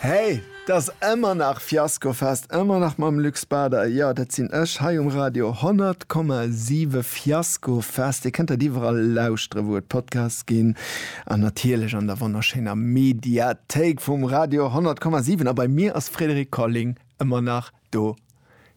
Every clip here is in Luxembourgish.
Hey, t'ass ëmmer nach Fiaskofest, ëmmer nach mam Luc Spader. Jo, dat sinn ech hei um Radio 100,7. Fiaskofest, Dir kënnt dat iwwerall lauschteren, wou et Podcasts ginn, an natierlech an der wonnerschéiner Mediathéik vum Radio 100,7. A bei mir ass Frédéric Colling ëmmer nach do.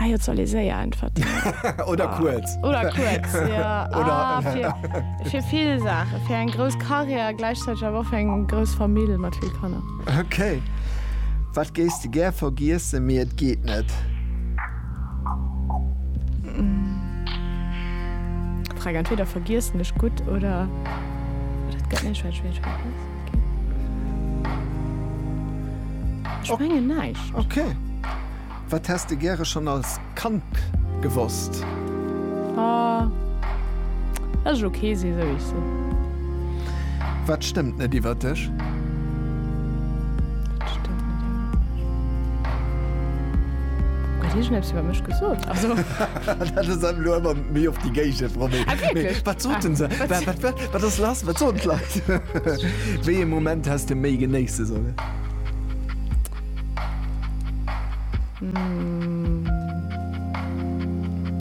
Ah jo, soll ee séier äntwerten. Oder ah. kuerz. Oder kuerz, ja. Oder ah, fir, fir vill Sache, fir eng grouss Karriär, gläichzäiteg awer och eng grouss Famill mat vill Kanner. Okay. Wat géis de gär vergiesse mir et geet net? Mm. Frag entweder vergiessen ech gut oder dat gëtt net schwéi schwéi. Schwéi neicht. Okay. okay. Wat häss de gäre schonn als Kand gewosst? A, Dass ech ok si sou wéi ech sinn. Wat stëmmt net iwwer dech? Wat stëmmt net iwwer mech? Huet hie schonn eppes iwwer mech gesot? Also. Dat ass elo ëmmer méi op déi Géigend, Romy. Ah wierklech? Wat soten se? Wat si. Wat, wat, wat ass lass? Wat soen d'Leit? Wéi ee Moment häss de méi genéisse sollen?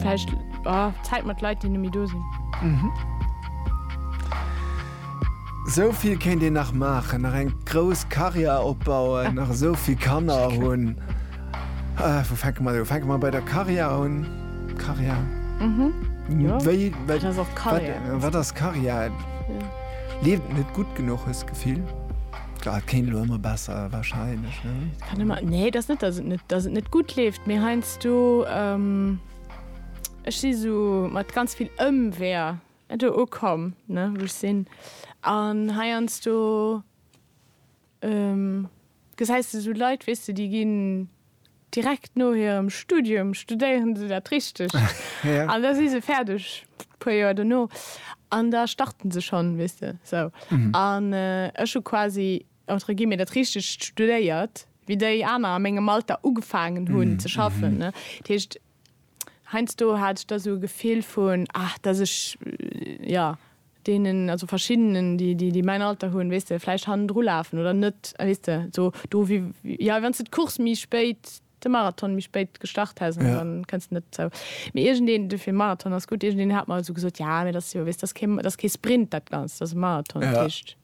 Vläicht Zäit mat Leit, déi net méi do sinn. Esou vill kéint een nach maachen, nach eng grouss Karriär opbauen, nach esou vill Kanner hunn. Wou fänke mer u? Fänke mer bei der Karriär un. Karriär. Wéi, wat ass Karriär? Leeft et net gutt genuch, hues d'Gefill? Et kéint elo ëmmer besser wahrscheinlech ne? Nee et ass net datt et net datt et net gutt leeft, mee heiansdo ech si sou mat ganz vill Ëmweeër do ukomm ne wou ech sinn an heiansdo gesäis de sou Leit weess de déi ginn. Direkt no hirem Studium studéieren se dat Richtegt an da si se fäerdeg, puer Joer dono, an da starten se schonn, weess de, sou. An ech hu quasi, entre guillemets, dat Richtegt studéiert, wéi déi aner a mengem Alter ugefaangen hunn ze schaffen, ne. Dat heescht, Heinsdo hat ech da sou e Gefill vun, ah, dass ech, jo, deenen, also verschiddenen, déi, déi, déi mäin Alter hunn, weess de, vläicht hannendru lafen oder net, weess de, sou do wéi, jo, wann s de d'Course méi spéit, de Marathon méi spéit gestart häss, an dann kënns de net zou. Mee iergendeen, dofir Marathon ass gutt, iergendeen hat mer sou gesot, jo, mee dat ass jo, weess de, dat ass kee, dat ass kee Sprint dat Ganzt, dat ass e Marathon, dat heescht.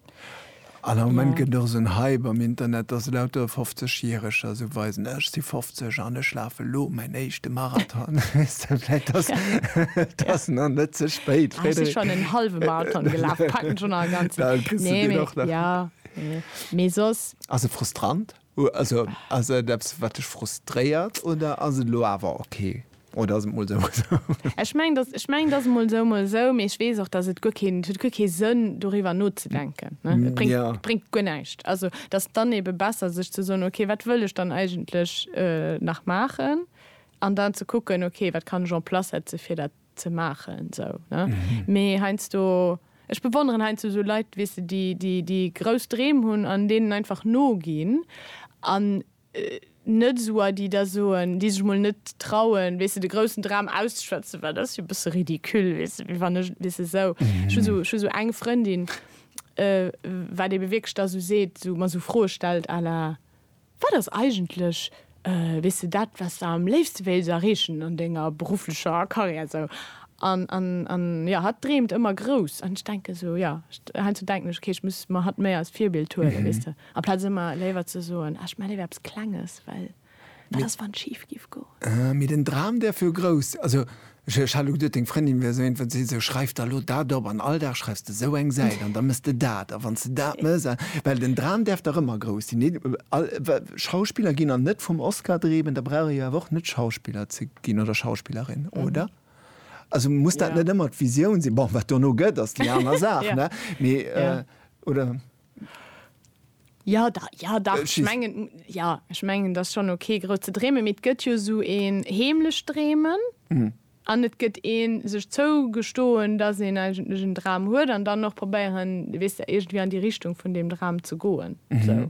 An am Moment gëtt och esou en Hype am Internet, dass lauter 50 Järeger esou weisen, ech si 50 an ech lafen elo mäin éischte Marathon. Weess de, vläit ass ass nach net ze spéit, Frédéric. Ech si schonn en hallwe Marathon gelaf, packen schonn nach en ganzen. Ass e frustrant? Also ass et eppes wat dech frustréiert oder ass et elo awer ok oder ass et mol sou mol sou? Ech mengen dass, ech mengen dass et mol sou mol sou, mee ech weess och dass et guer keen, et huet guer kee Sënn doriwwer nozedenken, ne, et bréngt, et bréngt guer näischt. Also et ass dann ebe besser sech ze soen, ok wat wëll ech dann eigentlech nach maachen an dann ze kucken, ok wat kann ech en place setze fir dat ze maachen sou ne mee heiansdo ech bewonneren heiansdo sou Leit weess de déi déi déi grouss Dreem hunn an deenen einfach noginn an net sou a déi da soen déi sech mol net trauen weess de de groussen Dram auszeschwätzen well dat ass jo e bësse ridicule weess de wéi wann ech weess de sou ech hu sou ech hu sou eng Frëndin wat ebe wierklech da sou seet sou mer sou Froe stellt à la Wat ass eigentlech, weess de, dat, wat s de am léifste wéilt erreechen an denger berufflecher Karriär esou? An jo, hatt dreemt ëmmer grouss an ech denke esou, jo, heiansdo denken ech, okay, ech muss mer hatt méi als Virbild huelen, weess de, amplaz ëmmer léiwer ze soen, ah, ech maache léiwer eppes Klenges, well wat ass, wann et schif géif goen? Mee den Dram däerf jo grouss, also Ech hat elo geduet, deng Frëndin wär esou een, wat seet esou, Schreif der elo dat op an all Dag schreifs de esou eng Säit an da mëss de dat a wann s de dat mëss a. Well den Dram däerf dach ëmmer grouss sinn. Deen all Schauspiller ginn an net vum Oscar dreemen, da brauch ee jo awer och net Schauspiller ze ginn oder Schauspillerin, oder? Also muss dat net ëmmer d'Visioun sinn? Bon, wat dono gëtt, ass déi aner Saach, ne? Mee, oder? Ja da, ja da, äh, ech mengen, ja, ech mengen dat schon okay gro ze dreemen, mit gëtt jo sou een heemlech dreemen mm. an et gëtt een sech zougestoen, dat een eigentlech en Dram huet an dann noch probéieren wis der irgendwie an die Richtung vun dem Dram ze goen mm -hmm. so.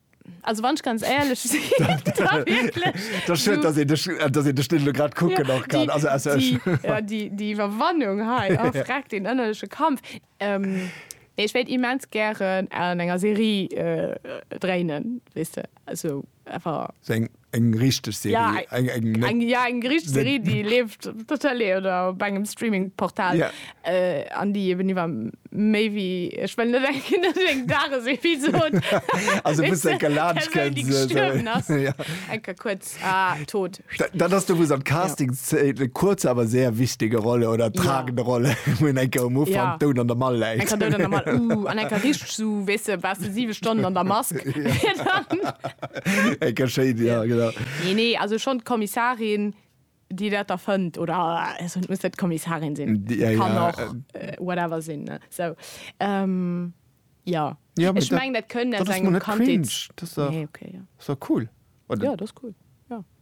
Also wann ech ganz éierlech si Déi Iwwerwannung hei a fräck deen ënnerleche Kampf. Nee ech wéilt immens gären an enger Serie dréinen, weess de, esou awer. Eng richteg Serie. Eng ja, eng richteg Serie, déi leeft op der Tëlee oder op engem Streaming-Portal yeah. äh, an déi eben iwwer méi wéi ech well net eng Kinder eng Dagesepisod also bis eng Galatsch kënnt eng kurz ah, tot dat ass du wos am Casting ja. kurz awer sehr wichtige Rolle oder tragende ja. Rolle hun eng um Ufang ja. doun an der Mall läit uh, an eng richteg so wése bas 7 Stonnen an der Mask ja. Enker schéin, ja, genau. Nee, nee, also schon d'Kommissarin, déi dat erfënnt, oder also et muss net d'Kommissarin sinn, et ja, kann ja, och äh, whatever sinn, ne, sou. Ähm, ja. Ja, Ech meng, dat kënnt aus engem Kandheets... Dat ass cringe. Dat ass dach, nee, okay, ja. Ass dach cool, oder? Ja, dat ass cool.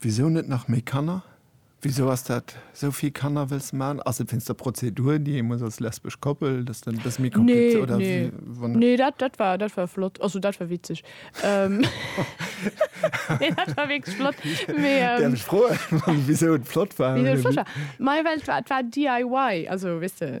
Wisou net nach méi Kanner? Wisou ass dat esou vill Kanner wëlls man? Ass et wéinst der Prozedur déi ee muss als lesbesch Koppel, dass dann e bësse méi komplizéiert oder wéi? Nee nee nee dat dat war dat war flott also dat war witzeg nee dat war wierklech flott mee däerf ech froen wisou et flott war? Wisou et flott war? Majo well et war et war DIY also weess de.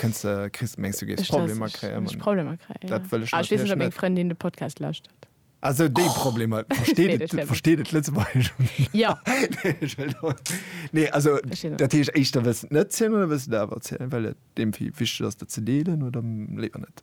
Kënns de, kriss de, mengs du géifs Problemer kréien? Ech Problemer kréien, ja. Ech weess net, ob meng Frëndin de Podcast lauschtert. Ah, sou déi Problemer. Versteet et Lëtzebuergesch? Jo. Nee, also dat heescht, éischter wëlls de et net zielen oder wëlls de et awer zielen, well et deem vill wichteg ass, dat ze deelen, oder léiwer net?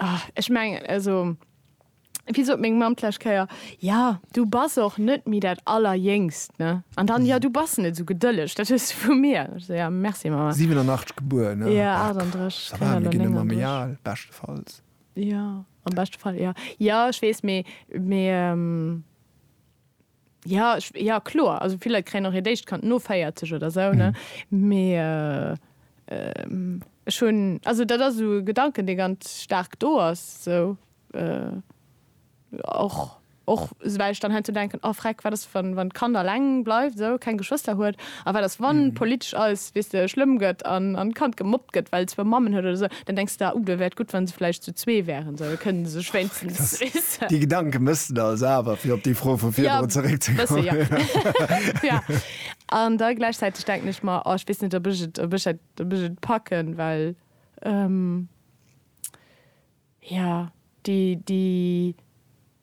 Ah, ech meng, also, wéi sot meng Mamm d'lescht Kéier, Ja, du bass och net méi dat Allerjéngst, ne? An dann, Ja, du bass net esou gedëlleg, dat hues du vu mir. Ech sou, Ja, merci, Mamma. 87 gebuer, ne? Jo, 38, Ça va, mir ginn ëmmer méi al, beschtefalls. Jo, am beschte Fall, jo. Jo, ech weess, mee, mee, Ja, ech, ja kloer, also vill Leit kréien och hiert éischt Kand no 40 oder sou, ne? Mee ech hunn, also dat ass esou e Gedanken, dee ganz staark do ass, sou och, och well ech dann heiansdo denken, oh freck, wat ass, wann, wann d'Kand alleng bleift, sou, keng Geschwëster huet? A wat ass, wann politesch alles, weess de, schlëmm gëtt an d'Kand gemobbt gëtt, well et zwou Mammen huet oder sou? Dann denks de, oh, do wär et gutt, wa se vläicht zu zwee wären, da kënnen se sech wéinstens rissen. Déi Gedanke mëss de also awer, fir op déi Fro vu virdrun zeréckzekommen. Ja, e bësse, jo. An da gläichzäiteg denken ech mer, oh, ech weess net, ob ech et, ob ech dat, ob ech et packen, well, ja. déi déi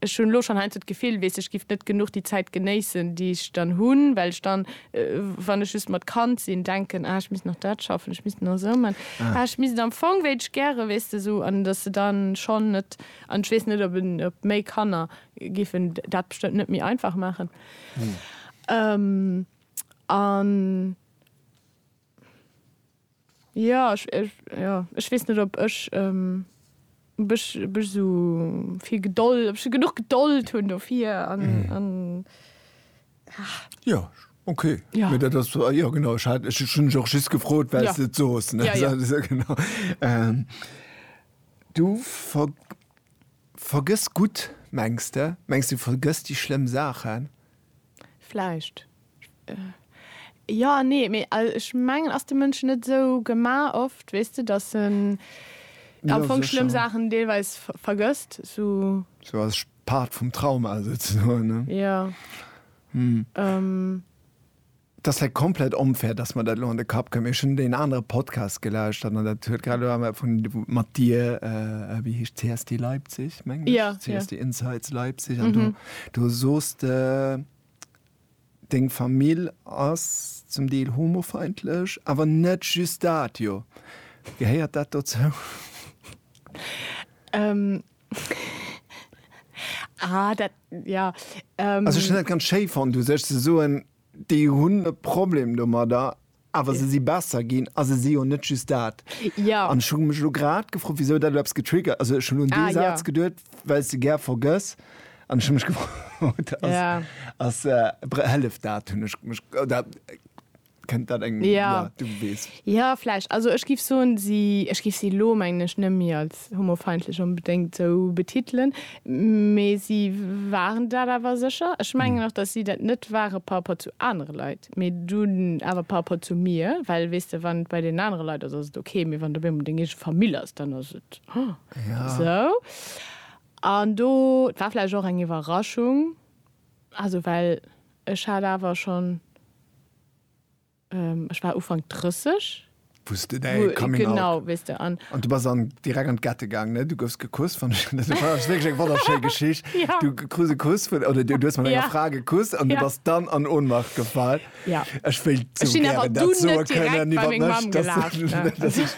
ech hunn elo schonn heiansdo d'Gefill, weess ech giff net genuch déi Zäit genéissen, déi ech dann hunn, well ech dann, wann ech just mat Kand sinn, denken, ah ech misst nach dat schaffen, ech misst nach esou man, ah ech misst am Fong wéilt ech gäre, weess de, esou an datt se dann schonn net an ech weess net ob en ob méi Kanner giffen dat bestëmmt net méi einfach maachen an. Jo, ech weess net ob ech esou vill Gedold, ob ech genuch Gedold hunn dofir an. Jo, ok, mee dat ass, jo genau, ech hat, ech hunn dech och just gefrot, well s de et sos, ne? Jo, jo, genau. Du vergëss gutt, mengs de? Mengs de, du vergëss déi schlëmm Saachen? Vläicht. Jo an nee. Mee ech mengen, ass de Mënsch net esou gemaach oft, weess de, datt en am Fong schlëmm Saachen deelweis vergësst? Sou als Part vum Trauma souzesoen? Jo. Et ass vläit komplett onfair, dass mer dat elo an de Kapp kréien, mee ech hunn deen anere Podcast gelauschtert an dat huet grad elo awer vun, mat dir, wéi heescht et, CSD Leipzig, mengen ech, CSD Insights Leipzig, an do, do sos de, deng Famill ass zum Deel homofeindlech, awer net just dat, jo? Gehéiert dat dozou? Also ech hunn dat ganz schéi fonnt, u sech ze soen, Déi hunn e Problem domadder, awer se si besser ginn a se si jo net just dat. An ech hu mech elo grad gefrot, wisou dat elo eppes getriggert, also ech hunn un dee Saz geduet, well s de gär vergëss an ech hu mech gefrot, ass, hëlleft dat, hunn ech mech, oder kënnt dat engem, jo, du weess. Jo, vläicht, also ech géif soen, si, ech géif si elo, mengen ech, net méi als als homofeindlech onbedéngt esou betitelen, mee si waren dat awer sécher. Ech mengen och, datt si dat net ware par rapport zu anere Leit, mee dunn awer par rapport zu mir, well, weess de, wann et bei deenen anere Leit ass, ass et ok, mee wann et op eemol deng eege Famill ass, dann ass et esou. An do war vläicht och eng Iwwerraschung, also well ech hat awer schonn. Ech war Ufank 30. Wou s de däi Coming Out. Genau, weess de. An du bass an direkt an d'Gette gaang, ne? Du goufs gekusst, fand ech, dat ass wierklech eng wonnerschéi Geschicht. Ja. Du krus e Kuss vun, oder du hues mat enger Fra gekusst an du bass dann an Ohnmacht gefall. Ja. Ech wéilt sou gären dat soe kënnen iwwer mech, dass ech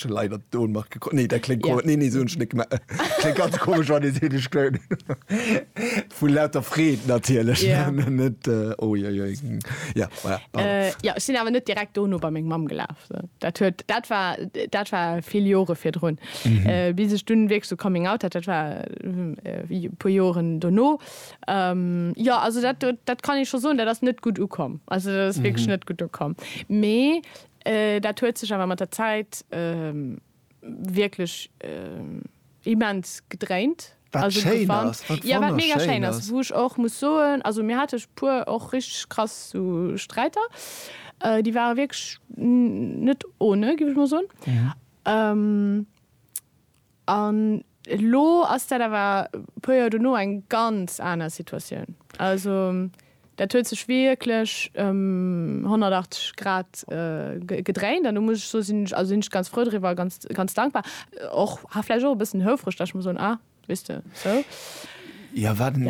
hu leider d'Ohnmacht gekroch. Nee, dat kléngt, nee, nee, sou hunn ech net gemaach. Kléngt ganz komesch, wann ee seet, ech. Vu lauter Freed natierlech. Ja. Net, äh, oh, joi, joi. Ja, voilà, pardon. Äh, ja, ech sinn awer net direkt dono bei meng Mamm gelaf. So. Dat, huet, dat, war, dat war vill Jore virdrun. Mhm. Äh, bis ech dunn wierklech so Coming Out hat, dat war äh, puer Joren dono. Ähm, ja, also dat, dat kann ich schon soen, dat ass net gutt ukomm. Also dat ass mhm. wierklech net gutt ukomm. Mee äh, dat huet sech awer mat der Zäit. Äh, wierklech immens gedréint. Wat schéin ass, wat wonnerschéin ass. Wou ech och muss soen, also mir hate puer och richteg krass sou Sträiter, déi ware wierklech net ohne, giff ech mol soen. An. Elo ass dat awer e puer Joer dono eng ganz aner Situatioun. Also dat huet sech wierklech ëm 180 Grad gedréint an do muss ech soe sinn ech, also sinn ech ganz frou driwwer a ganz, ganz dankbar. Och, ha vläicht och e bëssen houfreg, datt ech muss soen, ah, weess de, sou. Jo, wat en,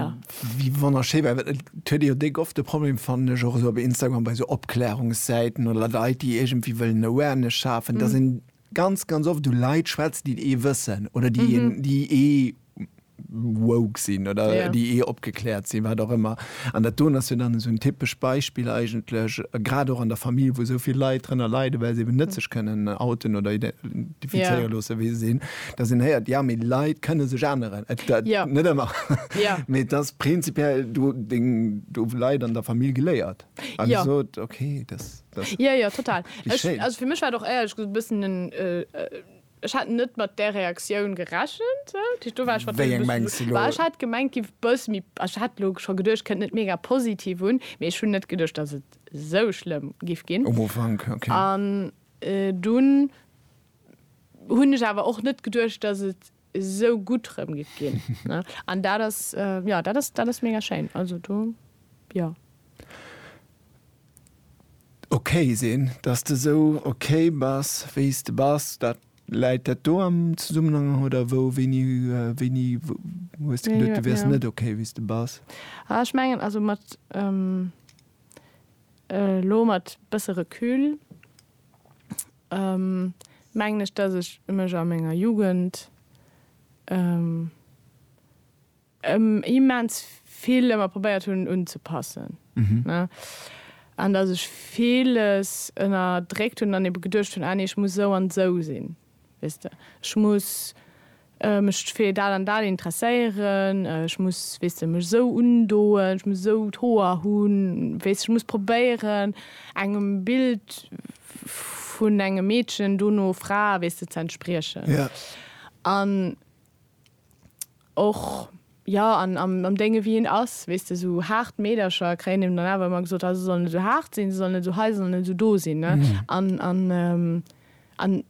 wéi wonnerschéi war, et huet ee jo déck oft de Problem, fannen ech, och esou op Instagram bei esou Opklärungssäiten oder Leit, déi iergendwéi wëllen Awareness schafen, datt een Ganz, ganz oft hu Leit schwätzen, déi ee wëssen oder déi een, déi ee woke sinn oder déi ee opgekläert sinn, wat och ëmmer. An dat doen ass jo dann esou en typesch Beispill eigentlech, grad och an der Famill, wou esou vill Leit drënner leiden, well se eben net sech kënnen outen oder identifizéiere loosse wéi se sinn, dass een héiert, jo, mee Leit kënne sech änneren. Net ëmmer, mee et ass prinzipiell do deng, do hu Leit an der Famill geléiert a gesot, okay, dass. Jo, jo, total. Ech, also fir mech war et och éierlech gesot e bëssen en, ech hat net mat där Reaktioun gerechent. Do war ech wat. Wéi eng mengs de lo? Ech hat gemengt giff e bësse méi, also ech hat lo scho geduecht kënnt net mega positiv un, mee ech hunn net geduecht datt et esou schlëmm giff ginn. Um Ufank, okay. An dunn hunn ech awer och net geduecht datt et esou gutt rëm gëtt ginn ne an dat ass jo dat ass dat ass mega schéin also do jo. Ok sinn, dass de sou ok bass wéi s de bass, dat läit dat do am Zesummenhang oder wou wéini wéini hues de geduet du wäers net ok wéi s de bass? Ah ech mengen also mat elo mat bësse Recul, mengen ech dass ech mech a menger Jugend immens vill ëmmer probéiert hunn unzepassen ne an dass ech villes ënnerdréckt hunn an ebe geduecht hunn, ah nee ech muss esou an esou sinn. Weess de, ech muss mech fir dat an dat interesséieren, ech muss, weess de, mech esou undoen, ech muss esou d'Hoer hunn, weess de, ech muss probéieren, engem Bild vun engem Meedchen, dono Fra, weess de, z'entspriechen. An. och jo an am Dénge wéi hien ass, weess de, esou haart Meedercher kréien him dann awer ëmmer gesot, ah se soll net esou haart sinn, se soll net esou hei, se soll net esou do sinn. An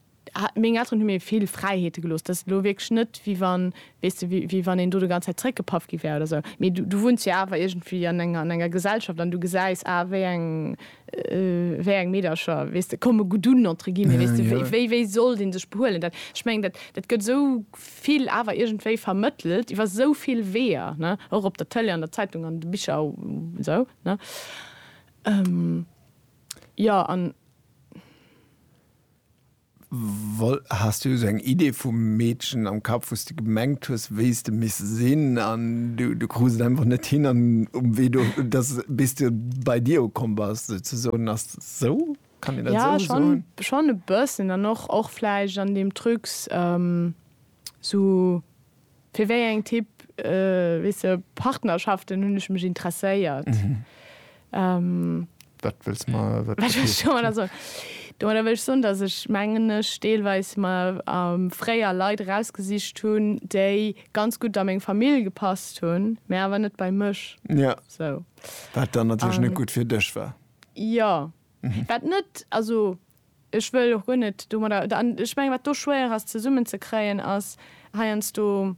meng Elteren hu mir vill Fräiheete gelooss. Dat ass elo wierklech net, wéi wann, weess de, wéi wann een do déi ganz Zäit zeréckgepaff gi wär oder esou. Mee du wunns jo awer iergendwéi an enger Gesellschaft an du gesäis, ah wéi eng wéi eng Meedercher, weess de, komme gutt un, entre guillemets, weess de, wéi, wéi sollt ee sech behuelen? Dat, ech mengen, dat, dat gëtt esou vill awer iergendwéi vermëttelt iwwer esou vill Weeër, ne, och op der Tëlee, an der Zeitung, an de Bicher u sou, ne, jo, an. Wall, Has du esou eng Idee vum Meedchen am Kapp, wou s de gemengt hues, wéi s de misst sinn, an du krus et einfach net hin, an um Wee do, dass, bis de bei dir ukomm bass, souzesoen? Ass dat esou? Kann een dat esou soen? Jo, schonn, schonn e bëssen. An och, och vläicht an deem Trucs. Sou fir wéi eng Typ, weess de, Partnerschaften hunn ech mech interesséiert. Wat wëlls ma domadder soen? Domadder wëll ech soen, dass ech, mengen ech, deelweis mer fréier Leit erausgesicht hunn, déi ganz gutt a meng Famill gepasst hunn, mä awer net bei mech. Jo. Sou. Wat dann natierlech net gutt fir dech war. Jo. Wat net, also. Ech wëll och guer net domadder, an ech menge wat do schwéier ass zesummen ze kréien ass heiansdo,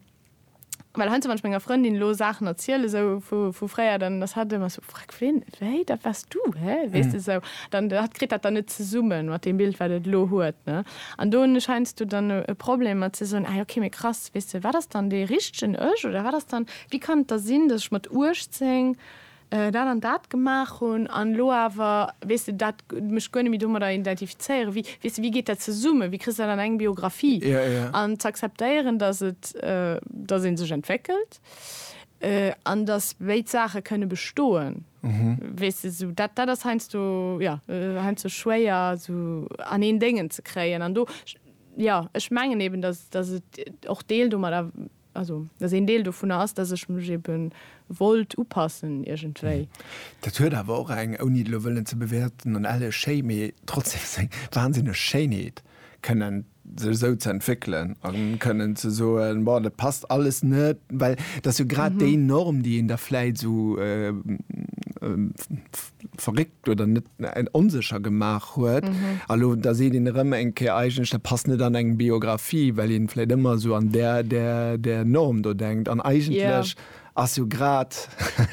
well heiansdo wann ech menger Frëndin elo Saachen erzielen esou vu fréier, dann ass hatt ëmmer sou, Freck, ween, wéi, dat waars du, hä, weess de esou, dann hatt kritt dat dann net zesummen mat deem Bild wat et elo huet, ne. An do hunn ech heiansdo dann e Problem mat ze soen, ah okay, mee krass, weess de, wat ass dann dee richtegen Ech oder wat ass dann, wéi kann et da sinn, datt ech mat 18, dat an dat gemaach hunn an elo awer, weess de, dat, mech guer net méi domadder identifizéieren, wéi, weess de, wéi geet dat zesummen, wéi kriss de dat an eng Biographie? An z'akzeptéieren, datt et, datt ee sech entwéckelt an datt béid Saache kënne bestoen, weess de, sou, dat, dat ass heiansdo, jo, heiansdo schwéier esou an een Déngen ze kréien an do, jo, ech mengen eben, datt, datt et och Deel domadder. Also, dass een Deel dovunner ass, dass ech mech ebe wollt upassen iergendwéi. Dat huet awer och eng, ouni et elo wëllen ze bewäerten, an elle Schéi, mee trotzdem seng wahnsinneg Schéinheet, kënnen sech esou ze entwéckelen a kënnen ze soen, Bon, dat passt alles net. Well dat ass jo grad déi Norm, déi een da vläit esou verréckt oder net en onsécher gemaach huet. Mhm. A lo da seet een erëm eng Kéier eigentlech, dat passt net an eng Biografie, well een vläit ëmmer esou an där, där, där Norm do denkt. An eigentlech ass jo grad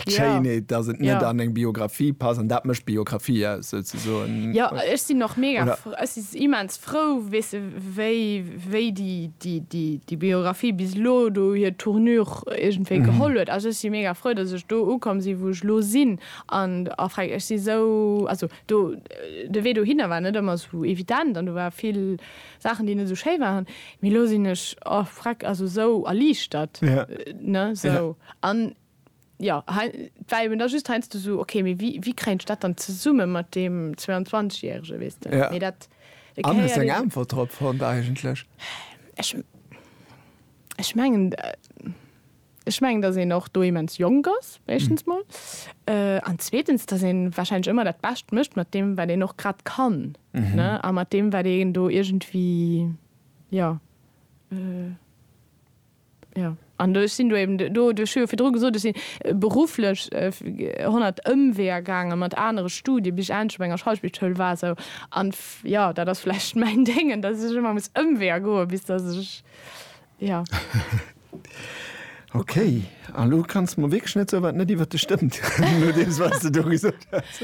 d'Schéinheet, dass et net an eng Biografie passt. An dat mécht d'Biografie aus souzesoen. Jo, ech sinn och mega, ech si immens frou, weess de, wéi, wéi déi, déi, déi, déi Biografie bis elo do hir Tournure iergendwéi geholl huet. Also ech si mega frou, dass ech do ukomm sinn, wou ech elo sinn. An a freng, ech si sou, also do, de Wee dohinner war net ëmmer sou evident an do ware vill Saachen, déi net sou schéi waren, mee elo sinn ech, o freck, also sou erliichtert, ne, sou. An jo, hei, 't war eben da just heiansdo sou, ok, mee wéi, wéi kréien ech dat dann zesumme mat deem 22 Järege, weess de? Mee dat. An hues eng Äntwert drop fonnt eigentlech? Ech, ech mengen. Ech mengen, dass een och do immens jonk ass, éischtens mol, an zweetens, dass ee warscheinlech ëmmer dat Bescht mécht mat deem, wat een och grad kann, ne, a mat deem, wat een do iergendwéi, jo, jo. An do, ech sinn do eben do, ech hu jo virdru gesot, ech si berufflech honnert Ëmweeër gaangen, mat anere Studien, bis ech endlech op enger Schauspielschoul war, sou, an, jo, dat ass vläicht mäin Déngen, dass ech ëmmer muss Ëmweeër goen, bis dass ech. Ja. Ok, a lo kanns de mer wierklech net soen, wat net iwwer dech stëmmt, no deem, wat s de do gesot hues.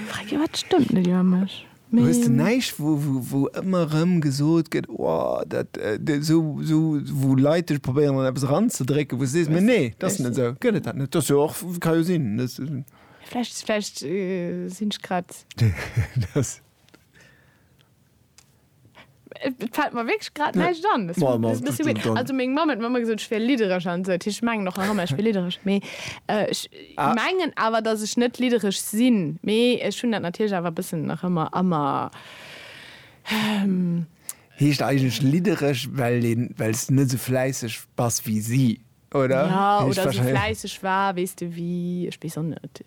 Frag jo, wat stëmmt net iwwer mech? Mee. Hues de näischt, wou, wou, wou ëmmer erëm gesot gëtt, o, dat, sou, sou, wou Leit dech probéieren, an eppes eranzedrécken, wou s de sees, mee nee, dat ass net esou? Gëtt et dat net? Dat ass jo och, ka jo sinn, dass. Vläicht, vläicht sinn ech grad. Et fällt mer wierklech grad näischt an. Das Ma, ma, ist ein bisschen weird. dann- Also meng Mamm huet mer ëmmer gesot, ech wier liddereg an esou. Ech mengen och nach ëmmer, ech wier liddereg. Mee äh, ech Ah. mengen awer, datt ech net liddereg sinn. Mee ech hunn dat natierlech awer e bëssen nach ëmmer a mer. Heescht eigentlech liddereg, well een, well s de net esou fläisseg bass wéi si, oder? Ja, Heescht oder esou wahrscheinlech- fläisseg war, weess de, wéi, ech weess och net.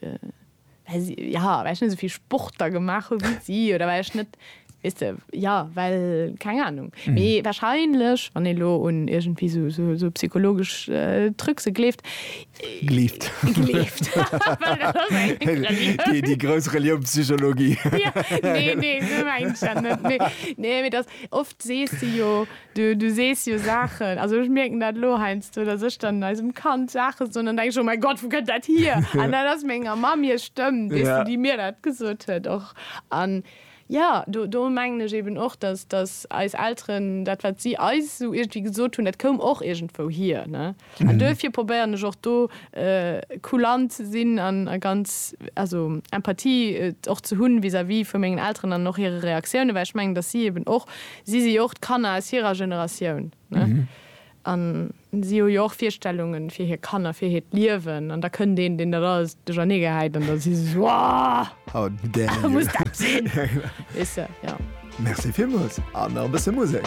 Well si, ja, well ech net esou vill Sport da gemaach hu wéi si oder well ech net, weess de, ja, well, keng Anung. Mee warscheinlech, wann ee lo un iergendwéi sou, sou, sou psychologesch Trucse gleeft, Gleeft. gleeft, well dat ass eng Relioun. Déi grouss Relioun Psychologie. Nee, nee, sou mengt ech dat net. Nee, nee, mee dass of Sees de jo, du sees jo Saachen, also ech mierken dat elo heiansdo, datt ech dann eisem Kand Saache soen, dann denke ech, oh mäi Gott, wou kënnt dat hier? An dat ass menger Mamm hir Stëmm, weess de, déi mir dat gesot huet och. An jo, do mengen ech eben och, datt eis Elteren, dat wat si eis esou iergendwéi gesot hunn, dat koum och iergendwou hier. An duerfir probéieren ech och do kulant ze sinn an a ganz, also Empathie och ze hunn vis-à-vis vu mengen Elteren an och hire Reaktiounen, well ech mengen, datt si eben och, si si jo och d'Kanner aus hirer Generatioun, ne? An si hu jo och Virstellungen fir hir Kanner, fir hiert Liewen. An da kënnt een, deen dat alles duerchernee gehäit an da si se sou, How dare you! Muss dat sinn? Weess de, jo. Merci villmools, an nach e bësse Musek.